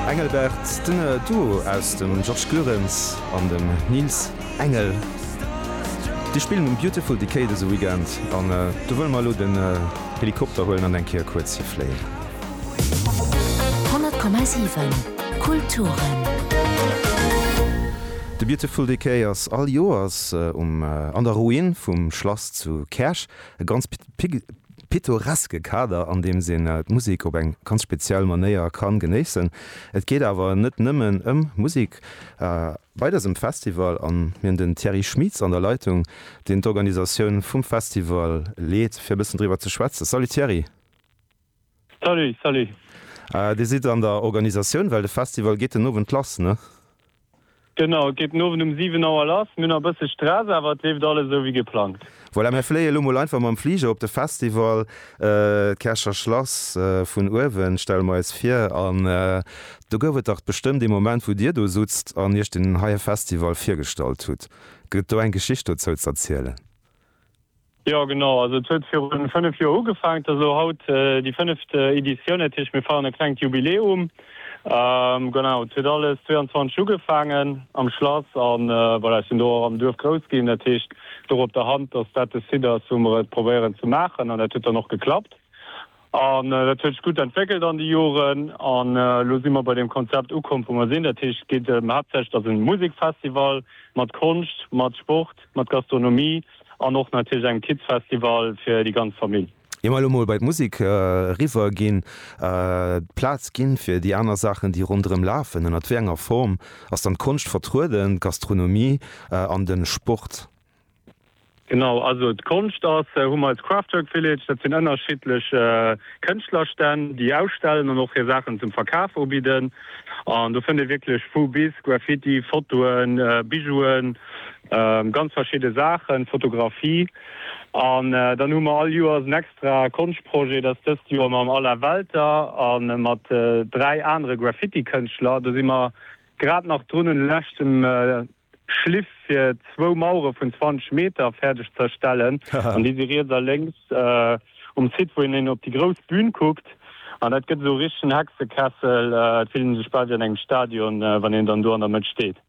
Engelbert, den Duo aus dem Georges Goerens an dem Nils Engel, déi spillen um Beautiful Decay dëse Weekend an do wëlle mer elo den Helikopter huelen an eng Kéier kuerz hi fléien. 100,7 Kulturen. De Beautiful Decay ass all Joers um an der Ruin vum Schlass zu Käerch e ganz pittoreske Kader an deems een d'Musek op eng ganz speziell Manéier kann genéissen. Et geet awer net nëmmen ëm Musek bei dësem Festival an mir hunn den Thierry Schmieds an der Leitung, deen d'Organisatioun vum Festival leet fir e bëssen driwwer ze schwätzen. Salut Thierry. Salut, salut. Dir sidd an der Organisatioun, well de Festival geet den Owend lass, ne? Genau, et geet den Owend um 7 Auer lass. Mir hunn nach e bësse Stress, awer et leeft alles esou wéi geplangt. Voilà, mir fléie lo mol einfach mam Fliger op de Festival. D'Käercher Schlass vun uewen stelle mer eis vir. An do gouf et dach bestëmmt ee Moment, wou dir do sutzt an iech deen heie Festival virgestallt hutt. Gëtt et do eng Geschicht dozou z'erzielen? Jo genau, also et huet virun 5 Joer ugefaangt, ass elo haut déi fënneft Editioun, dat heescht mir feieren e klengt Jubiläum. Genau, et huet alles 22 Uhr ugefaangen am Schlass an voilà, ech sinn do och am Duerf grouss ginn, dat heescht et louch op der Hand, dass dat de Site ass wou mer et probéieren ze maachen an dat huet dann och geklappt. An dat huet sech gutt entwéckelt an de Joren. An elo si mer bei deem Konzept ukomm, wou mer sinn. Dat heescht, et geet ëm haaptsächlech, dass en Musekfestival mat Konscht, mat Sport, mat Gastronomie an och natierlech engem Kidsfestival fir déi ganz Famill. Ier mer elo mol bei d'Musek eriwwer ginn, d'Plaz ginn fir déi aner Saachen, déi ronderëm lafen, ënnert wéi enger Form ass dann d'Konscht vertrueden, d'Gastronomie an de Sport? Genau, also d'Konscht ass, hu mer als Kraftwerk Village, dat sinn ënnerschiddlech Kënschtlerstänn, déi ausstellen an och hir Saachen zum Verkaf ubidden. An do fënnt ee wierklech vu bis, Graffiti, Fotoen, Bijouen, ganz verschidde Saachen, Fotografie. An dann hu mer all Joers en extra Konschtprojet, dat ass dëst Joer mam Alain Welter a mat dräi anere Graffitikënschtler. Do si mer grad nach drun un de leschten Schliff fir zwou Mauere vun 20 Meter fäerdeg ze erstellen. An déi si riets a lénks um Site, wou een op déi grouss Bühn kuckt. An dat gëtt esou e richtegen Hexekessel. Et fillt een sech bal wéi an engem Stadion, wann een dann do an der Mëtt steet.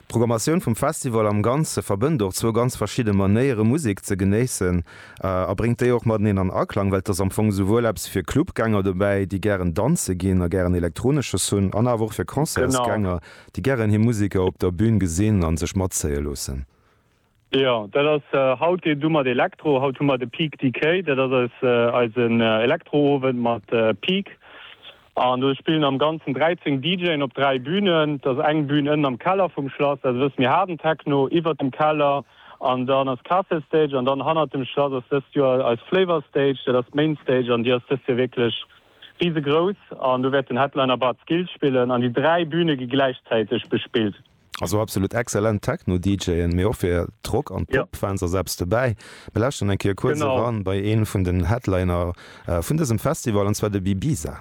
D'Programmatioun vum Festival am Ganze verbënnt och zwou ganz verschidde Manéiere Musek ze genéissen a bréngt déi och mateneen an Aklang, well et ass am Fong esouwuel eppes fir Clubgänger dobäi, déi gären danze ginn a gären Elektronesches hunn, an awer och fir Concertsgänger, déi gären hir Museker op der Bün gesinn an sech matzéie loossen. Jo, dat ass haut deen du mat Elektro. Haut hu mer de Peak Decay, dat ass eisen Elektro-Owend mat Peak. An do spillen am Ganzen 13 DJen op dräi Bünen. Et ass eng Bün ënnen am Keller vum Schlass, dat ass e bësse méi haarden Techno, iwwert dem Keller an dann ass d'Castle Stage an dann hannert dem Schlass ass dëst Joer eis Flavor Stage, dat ass d'Main Stage an déi ass dëst Joer wierklech Riesegrouss an do wäert den Headliner Bad Skills spillen an déi dräi Bühne gi gläichzäiteg bespillt. Also absolut exzellent Techno-DJen, mee och fir d'Rock an d'Pop-Fans ass eppes dobäi. Mir lauschteren eng Kéier kuerz eran bei ee vun den Headliner vun dësem Festival, an zwar de Bibiza.